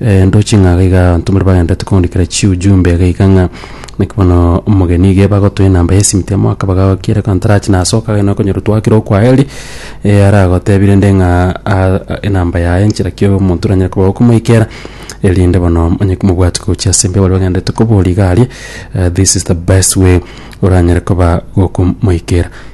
Rento ching'aaga iga abantomori bagenderete koondikera chiujumbe geika ng'a naki bono omogeni iga ebagotoe enamba y'esimiti amo akaba gagokia ere kantarachi nasoka agende na okonyora twakire okwayeri eh, aragotebi rende ng'a ah, ah, enamba yaye nchera ki omonto oranyare koba okomoikera erinde bono onye komobwati gochia ase mbe baria bagenderete koboria iga aria eh, this is the best way oranyare koba gokomoikera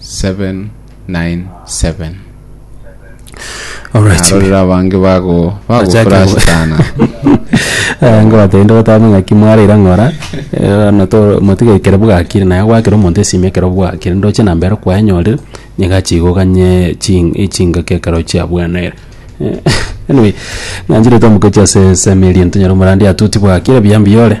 797 Alright. narorire abange bago Bachake bagokora go- asitana Eh, ngo batagende gotama ng'aki mwareira ng'ora eh, na to motige ekero bwakire naye gwakera omonto esimi ekero bwakire ndoche namba ero kwaenyorire niga chigoganye ching- echingaki ekero chiabwenerire Eh, anyway ng'ancherete omogochi ase esemi eri ntonyare omorandi atuti bwakire buya mbuya ore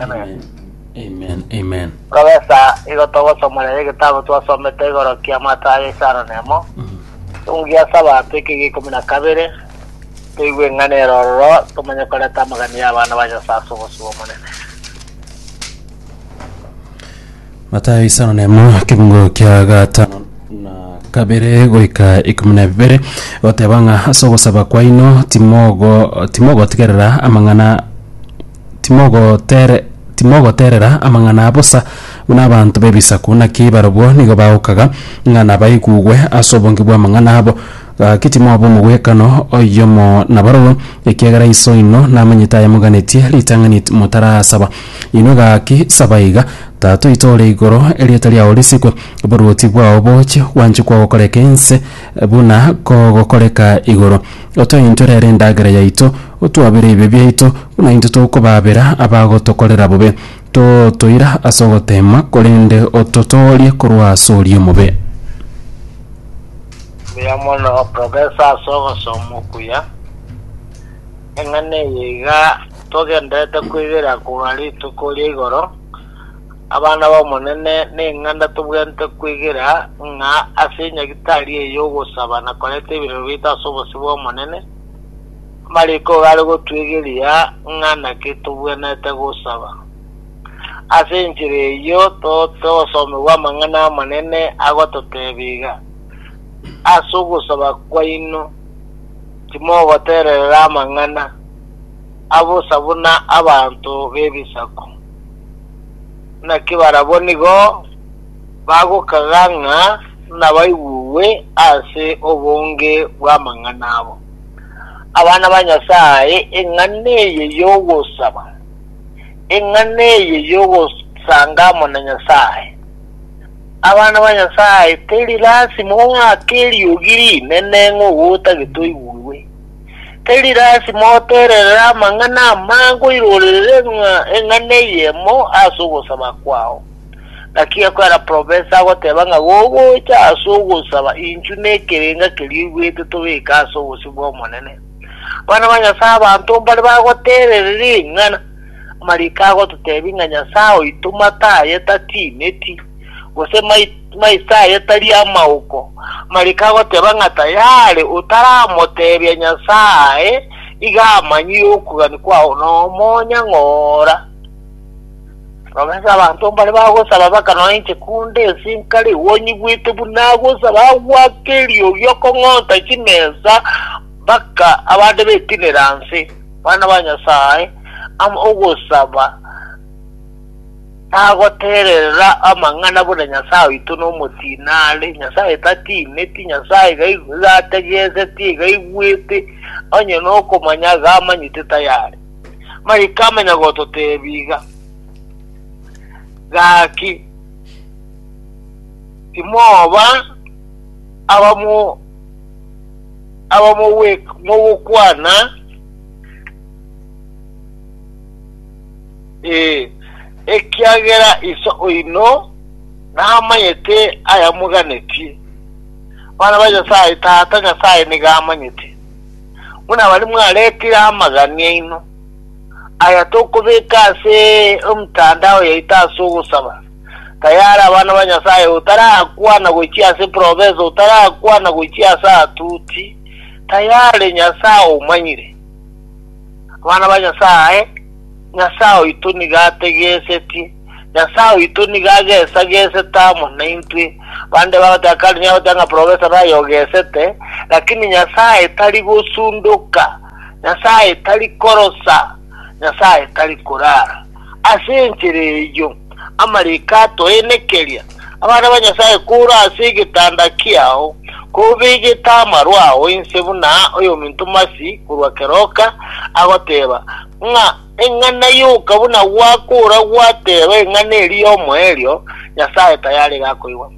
Amen. Amen. Amen. Kobesa igo togosomoreria egetabu twasomete igoro kia Amatayo ya Isaro nemo. Ekungu gia Sabato eke gia ikomi na kabere, toigwe eng'ana ere ororo, tomanye koreta amagani y'abana ba Nyasae ase obosio bw'Omonene. Matayo isano na emo ekekungo kia gatano na kabere goika ikomi na bibere goteba ng'a ase ogosaba kwaino timogo timogotigerera amang'ana timogotere timogoterera amang'ana a bosa buna abanto b'ebisaku naki barobwo nigo bagokaga ng'a nabaigugwe ase obonge bw'amang'ana abo Gaki timoba omogwekano oyomo nabaroro, ekiagera Iso oino namanyete ayamoganetie ritang'ani motarasaba inwe. Gaki saba iga, Tata oito ore igoro, erieta riao risikwe, oboruoti bwao boche, gwanchwe kwao gokoreke inse buna kogokoreka igoro. Otoe intwe rero endagera yaito, otwabere ebibe biaito, buna intwe tokobaabera abagotokorera bobe. Totoira ase ogoteema, korende ototoorie korwa ase oria omobe. Mbuya mono, Professor ase ogosoma okuya. Eng'ana eye iga togenderete koigera korwa rituko ria igoro, abana b'Omonene neng'anda tobwenerete koigera ng'a ase enyagitari eye y'ogosaba na koreta ebirero biaito ase obosio bw'Omonene, amariko iga are gotuigeria ng'a naki tobwenerete gosaba. Ase enchera eyio togosomigwa amang'ana amanene agototebia iga. ase ogosaba kwaino timogotererera amang'ana abosa buna abanto b'ebisaku. Naki barabwo nigo bagokaga ng'a nabaigugwe ase obonge bw'amang'ana abo. Abana ba Nyasae, eng'ana eye y'ogosaba, eng'ana eye y'ogosanga amo na Nyasae, Abana ba Nyasae, teri lasima oake eriogi rinene ng'a ogotagete oigurwe. Teri lasima otererere amang'ana amange oirorere ng'a eng'ana eyemo ase ogosaba kwao. Naki ekwera profesa agoteba ng'a gogocha ase ogosaba inchu nekerenga keria oigwete tobeke ase obosio bw'Omonene. Abana ba Nyasae abanto mbare bagoterereri eng'ana. Amariiko agototebia ng'a Nyasae oito mataye tatineti, gose maiso aye tari amaoko. Amariiko agoteba ng'a tayare otaramotebia Nyasae iga amanyire okogania kwao nomonyang'ora. Robense abanto mbare bagosaba baka nonya inche kunde ense inkare igo onyigwete buna agosaba agwake eriogi okong'onta chimesa, Baka abande betinera nse, bana ba Nyasae, am ogosaba tagotererera amang'ana buna Nyasae oito nomotinare, Nyasae tatineti, Nyasae iga iga ategeseti, iga aigwete, onye nokomanya iga amanyete tayari. Mariko amanya gototebi iga, Gaki, timoba abamo Aba mogokwana, ee, ekiagera Iso oino namanyete ayamoganetie. Abana ba Nyasae, Tata Nyasae nigo amanyete buna abare mwaretire amagani aino, aya tokobeka ase emtandao yaito ase ogosaba. tayare abana ba Nyasaye, otarakwana gochia ase province, otarakwana gochia ase atuti, tayare Nyasaye omanyire. Abana ba Nyasaye, Nyasaye oito nigo ategesetie, Nyasaye oito nigo agesagesete amo naintwe. Bande bagoteba karinya goteba ng'a profesa naye ogesete, lakini Nyasaye tari gosundoka, Nyasaye tari korosa, Nyasaye tari korara. Ase enchera eyio amariko atoenekeria, Abana ba Nyasae, kora ase egetanda kiao, kobegete amaro ao inse buna oyominto masi korwa keroka agoteba, ng'a eng'ana yoka buna gwakora gwateba eng'ana eria y'omoerio, Nyasae tayare gakoigwa.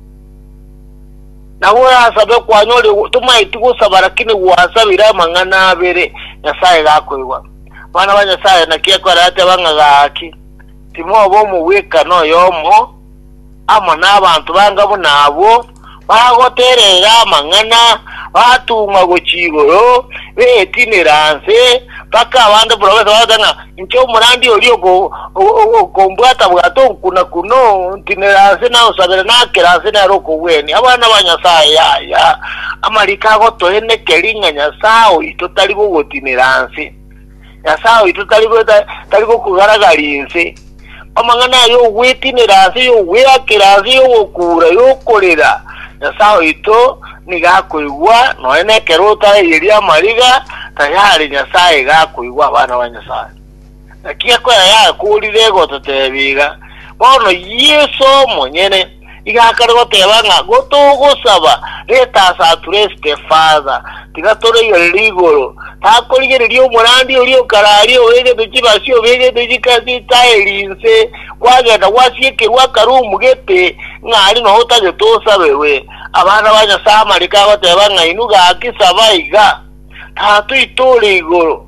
Na gorasabe kwanyore, tomaeti gosaba, lakini gwasabire amang'ana abere, Nyasae gakoigwa. Abana ba Nyasae, naki ekore ati abang'aga aaki? Timoba omogwekano oyomo amo n'abanto banga buna abwo, bagoterera amang'ana, batung'wa gochia igoro, betinera nse, mpaka abande buna bonsi bagoteba ng'a, Inche omorandia oria oko, Okombwata-bwata onkuna kune, ontinere aase naonsabere nakera aase nere okogwenia abana ba Nyasae. Yaya, amariko agotoenekeri ng'a Nyasae oito tari bogotinera nse. Nyasae oito tari tari bokogaragaria ense. Amang'ana aya y'ogwetinera nse, y'ogweakera nse, y'ogokuura, y'okorera, Nyasae oito nigo akoigwa, nonya nekero otaeyeria amariga, tayari Nyasae iga akoigwa abana ba Nyasae. Ekiagera kwera yakorire egototebia iga, bono Yeso omonyene iga akare goteba ng'a gotogosaba reta ase atureste, Father, tiga torigerere igoro, takorigereria omorandi oria o kare aria obegete chibasi, obegete chike ase etaeri inse, kwagenda gwasiekerwa akarumu gete, ng'a aria noo otagete osaberwe. Abana ba Nyasae amariko agoteba ng'a inwe gaki saba iga, Tatoito ore igoro.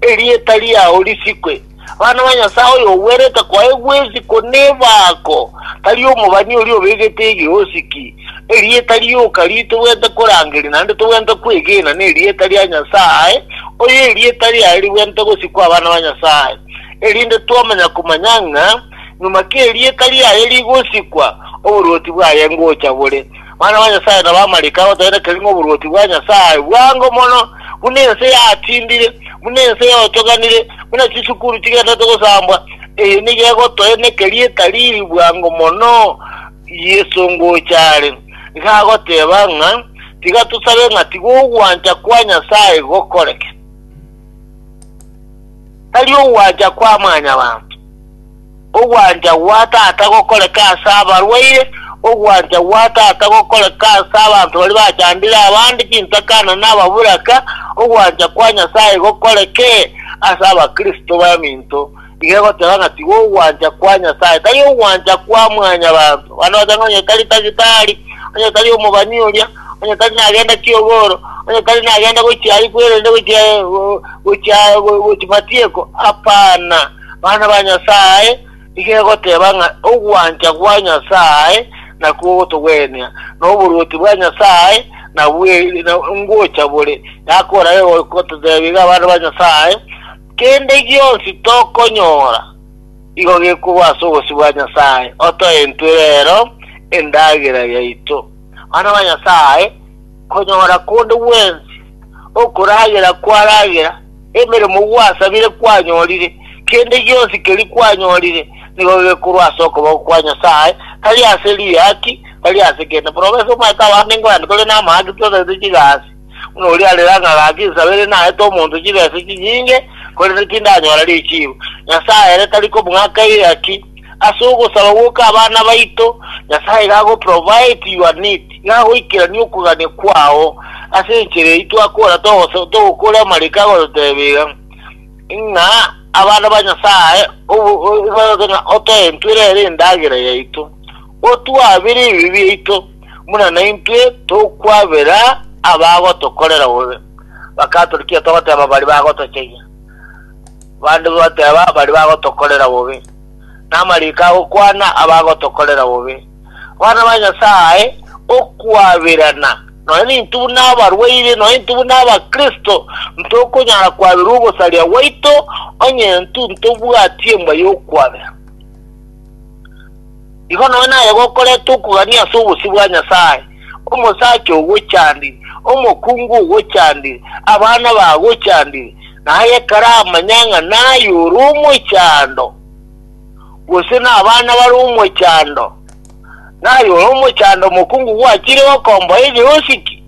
Erieta riao risikwe. Abana ba Nyasae oyogwerete koaye gwesiko nebako, tari omobani oria obegete egeosiki. Erieta rioka ri'yi togwenerete korangeria naende togwenerete kwegena nerieta ria Nyasae, oyo erieta riaye rigwenerete gosikwa abana ba Nyasae. Erinde twamanya komanya ng'a nyuma k'erieta riaye rigosikwa, oboruoti bwaye ngocha bore. Mwana wa Nyasae na b'amarika agoteneneke ng'a oboruoti bwa Nyasae bwango mono, buna ense yatindire, buna ense yochoganire, buna chisukuru chigenderete gosambwa, eye nigo egotoeneka rieta riiri bwango mono. Yeso ngocha are, nigo agoteba ng'a, Tiga tosabe ng'a tiga ogwancha kwa Nyasae gokoreke, tari ogwancha kwa mwanyabanto. Ogwancha gwa Tata gokoreke ase abarwaire, ogwancha gwa Tata gokoreke ase abanto baria bachandire abande chintakana na ababuraka, ogwancha kwa Nyasae gokoreke ase abakristo baminto. Iga egoteba ng'a tiga ogwancha kwa Nyasae, tari ogwancha kwa mwanyabanto. Abande bachaanga onye tari tagitari, onye tari omobani oria, onye tari nagenda kiogoro, onye tari nagenda gochia aria kwerende gochia gochia gochia matieko, hapana. Bana ba Nyasae, iga egoteba ng'a ogwancha gwa Nyasae nakwo ogotogwenia, na oboruoti bwa Nyasae nabwo ngocha bore. Yakoora egototebia iga abana ba Nyasae, Kende gionsi tokonyora igo gekorwa ase obosio bwa Nyasae, otoe intwe rero endagera yaito. Bana ba Nyasae, konyora konde gwensi okoragera kwaragera Emeremo gwasabire kwanyorire, kende gionsi keria kwanyorire, nigo gekorwa ase okoboko kwa Nyasae, tari ase riaki, tari ase kende. Buna obese omanyete abande ingo aye tore namang'ana ki totagete chigasi, buna oria arera ng'a gaki nsaba ere naete omonto chibesa chinyinge, korende tindanyora richiibo. Nyasae ere tari kobung'aka eriaki. Ase ogosaba goka abana baito, Nyasae iga ago provide your need, iga agoikerania okogania kwao. Ase enchera eyio twakora togosa togokora amariko agototebia iga ng'a abana ba Nyasae obogoke ng'a otoentwere ere endagera yaito, otwabere ebibe biaito, buna naintwe tokwabera abagotokorera bobe. Bakaturikia togoteba bari bagotochayia. Bande bateeba baria bagotokorera bobe, namariiko agokwana abagotokorera bobe. Abana ba Nyasae, okwaberana, nonya nintwe buna abarwaire, nonya nintwe buna Abakristo, ntokonyara kwabera ogosaria gwaito, onye intwe ntobwatie emba yokwabera. Igo nonya naye gokoreta okogania ase obosio bwa Nyasae, omosacha ogochandire, omokungu ogochandire, abana bagochandire, na aye karamanya ng'a naye ore omochando, gose n'abana bare omochando, naye ore omochando omokungu gwachire gokomboa egeosi ki?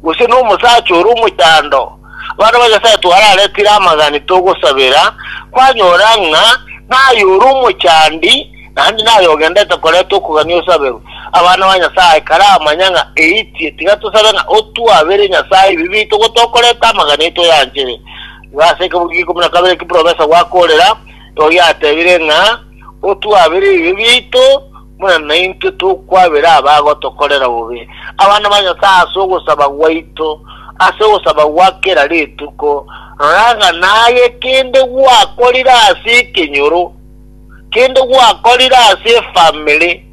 gose nomosacha ore omochando, abana ba Nyasae twararetire amagani togosabera, kwanyora ng'a naye ore omochandi naende naye ogendete koreta okogania osaberwe abana ba Nyasae karamanya ng'a eitie. Tiga tosabe ng'a otwabere Nyasae ebibe biaito ogo tokoreta amagani aito yanchere. Igo ase ekebugia kia ikomi na kabere ekiprofesa gwakorera, oyatebire ng'a otwabere ebibe biaito, buna naintwe tokwabera abagotokorera bobe, abana ba Nyasae ase ogosaba gwaito ase ogosaba gwa kera rituko, rora ng'a naye kende gwakorire ase ekenyoro, kende gwakorire ase efamiri,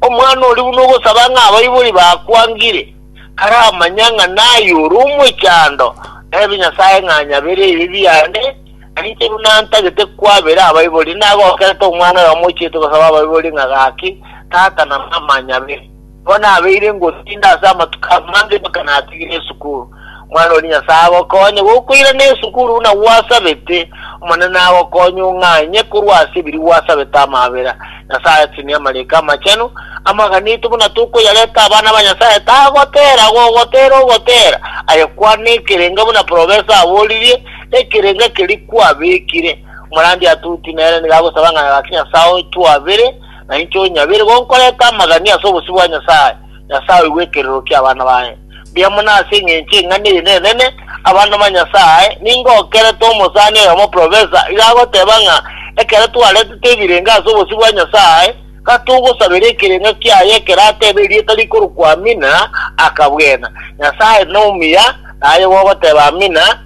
omwana oria buna ogosaba ng'a abaibori bakwangire, karamanya ng'a naye ore omochando, naebe Nyasae ng'a nyabera ebibe biane, Nainche buna ntagete kwabera abaibori, nagokerete omwana oyomo ochiete gosaba abaibori ng'a gaki, Tata na mama nyabe. Nigo nabeire ngotinda ase amatuko amange mpaka natigire esukuru. Omwana oria Nyasae agokonye gokoirana esukuru buna gwasabete, Omonene agokonye ong'anye korwa ase ebiria gwasabete amabera. Nyasae tinia amariiko amachenu amagana aito buna tokoyareta abana ba Nyasae, tagotera, gogotera ogotera, aye kwana ekerenga buna profesa aboririe, Ekerenga keria kwabekire, omorandia Atuti nere nigo agosaba ng'a gaki Nyasae oitwabere, na inche onyabere, gonkoreta amagania ase obosio bwa Nyasae. Nyasae oigwe ekerero ki'abana baye. Mbuya mono ase engencho y'eng'ana eye enene, abana ba Nyasae, ningokerete omosani oyomo professor, iga agoteba ng'a ekero twaretete ebirenga ase obosio bwa Nyasae, gatogosabera ekerenga kiaye ekero ateba erieta rikorokwa Amina, akabwena. Nyasae nomuya, naye gogoteba Amina.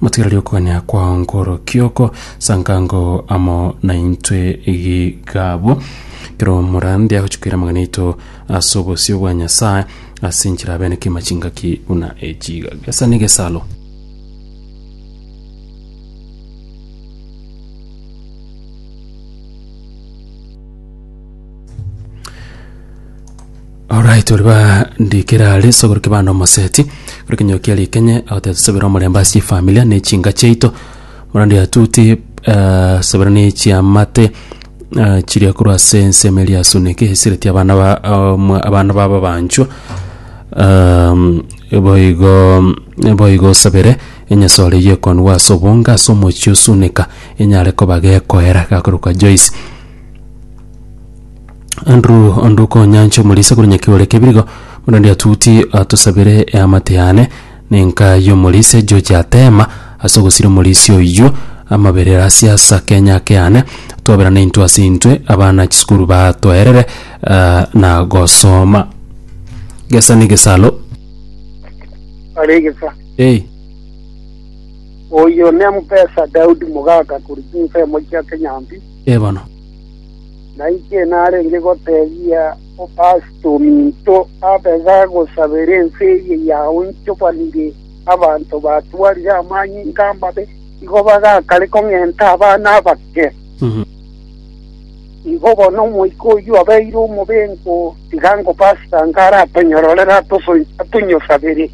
Motigererie okogania kwao nkorokio oko, sankango amo naintwe gigabwo. Kero omorandi agochia koira amang'ana aito ase obosio bwa Nyasae, ase enchera abeneke amachingaki buna echiga. Gesa negesalo. Alright ori bandikera are sogoro kibanda omoseti kuri kinyokia rikenye agoteba tusabera omorembe ase efamilia ne chinga chiaito morandi atuti eh, sabera ne chiamate eh, chiria korwa ase ensemo eria asuneke esireti abana ba omwa- abana babo abanchwa um, boigo boigo osabere enyasore eyio ekonigwa ase obonge ase omochie osuneka enyare koba gekoera gakorekwa Joyce Andrew onde okonyancha omorisa korwa nyakigore kebirigo buna onde atuti atosabere eamate yane nenka y'omorisa ejoji atema ase ogosira omorisia oyio amabere ase asa kenya ake yane twaberana intwe ase intwe abana chisukuru batoerere ah, na gosoma gesa ni gesalo aregesa hey. oyo ne mupesa daudi mugaka kuri nsemo chia kenyambi ebono na inche narenge gotebia o Kasito ominto abe gagosabera ense eye yaonchobanire abanto batwarire amanyinga amabe, igo bagakare kong'enta abana abake. Igo bono omoika oyio obeire omobengo, tiga ngo Kasito ange aratonyororere atonyosabere.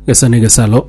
Gesa negesaro.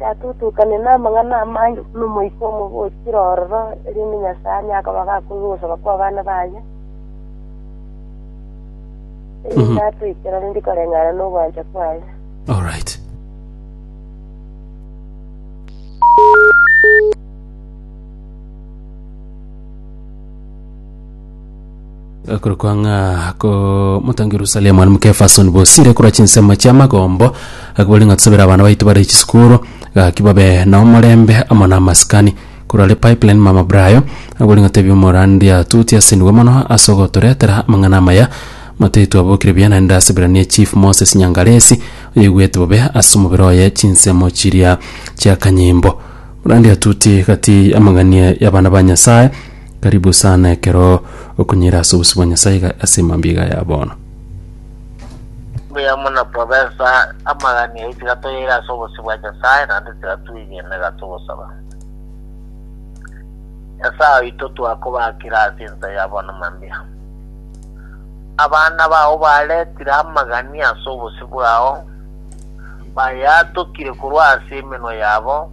Yatutukania namang'ana amange buna omoika omobe ochire ororo, erinde Nyasae anye akobaga akoigwa ogosaba kw'abana baye, erinde atoikere rende koreng'ana nogwancha kwaye. Alright. Ekorokwa ng'a komotangi Yerusalemu aria mok'Efeso nibosire korwa chinsemo chi'amagombo, akabori ng'a tosabere abana baito bare chisukuru, gaki babe nomorembe amo namasikani. Korwa are Pipeline mama Brayo, akabori ng'a tebia omorandia atuti ase nigo mono ase ogotoretera amang'ana amaya, matayo twabokire buya naende ase Ebrania Chief Moses Nyangalesi, oyoigwete bobe ase omobere oye chinsemo chiria chi'akanyimbo. Omorandia atuti gati y'amang'ani y'abana ba Nyasaye. Karibu sana ekero okunyira ase obosio bwa Nyasae iga ase mambia iga ya bono. Mbuya mono Professor, amagani ayio tiga toyaire ase obosio bwa Nyasae naende tiga twegene iga togosaba. Nyasae oito twakobakire ase ensa ya bono mambia. Abana bao baretire amagani ase obosio bwao, bayaatokire korwa ase emenwa yabo,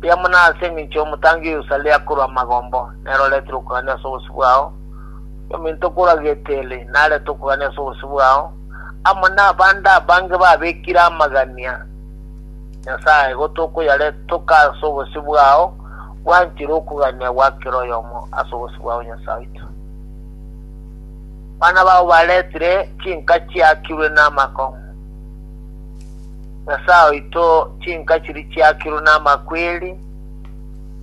Riamwe na ase engencho y'omotangi o Yerusalemu akorwa amagombo, nere oretere okogania ase obosio bwao, ominto okorwa Geteli narete okogania ase obosio bwao, amo nabande abange babekire amagania Nyasae, igo tokoyaretoka ase obosio bwao, bwanchire okogania gwa kera oyomo ase obosio bwao Nyasae oito. Abana bao baretire chinka chiakirwe namako. Nyasae oito, chinka chiria chiakirwe namakweri,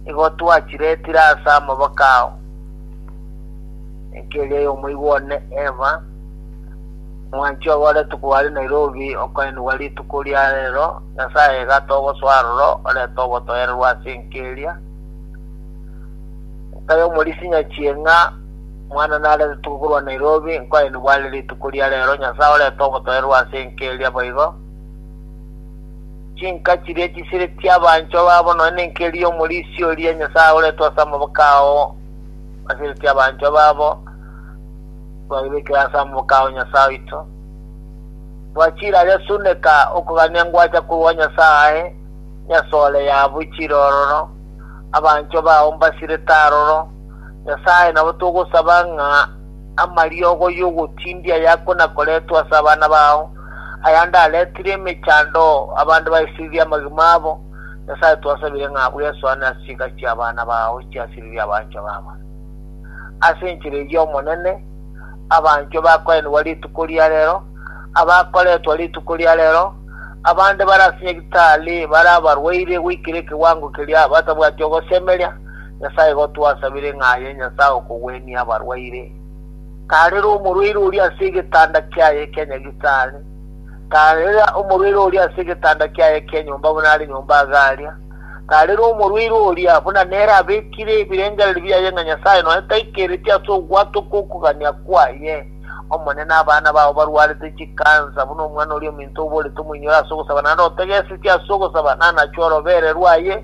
nigo twachiretire ase amaboko ao, enka eria y'omoigwa one Eva, omwanchi obo ore tukuba aria Nairobi, okoenigwa rituko ria rero, Nyasae egata ogosoa aroro, orete obotoyererwa ase enka eria, enka y'omorisia nyachieng'a, Omwana narente tugo korwa Nairobi, nkoaye nibware rituko ria rero, Nyasae orete ogotoererwa ase enka eria boigo. Chinka chiria chisire chi'abanchwa babo nonya nenka eria y'omorisia oria, Nyasae oretwe ase amaboko ao asire chi'abanchwa babo, twayebekire ase amaboko ao Nyasae oito. Twachire aria suneka okogania ngwacha korwa Nyasae, nyasore yabo ichire ororo, abanchwa bao mbasirete aroro, Nyasae nabo togosaba ng'a amariogo y'ogotindia yakona-koretwe ase abana bao, ayande aretire emechando abande baisiririe amagima abo, Nyasae twasabire ng'a abwo esoane ase chinkari chi'abana bao chiasiririe abanchwa babo. Ase enchera eyio Omonene, abanchwa bakoenigwa rituko ria rero, abakoretwa rituko ria rero, abande bare ase nyagitari, bare abarwaire goikera ekewango keria batabwati ogosemeria, Nyasae igo twasabire ng'a aye Nyasae okogwenia abarwaire, tarera omorwaire oria ase egetanda kiaye kia nyagitari, tarera omorwaire oria ase egetanda kiaye kia nyomba buna are nyomba agaria, tarera omorwaire oria buna nere abekire ebirengererio biaye ng'a Nyasae nonya taikereti ase ogwatwa kw'okogania kwaye. Omonene abana bao barwarete chikansa, buna omwana oria ominto oborete omoinyore ase ogosaba, naende otegesetie ase ogosaba, nanachwe orobeererwa aye,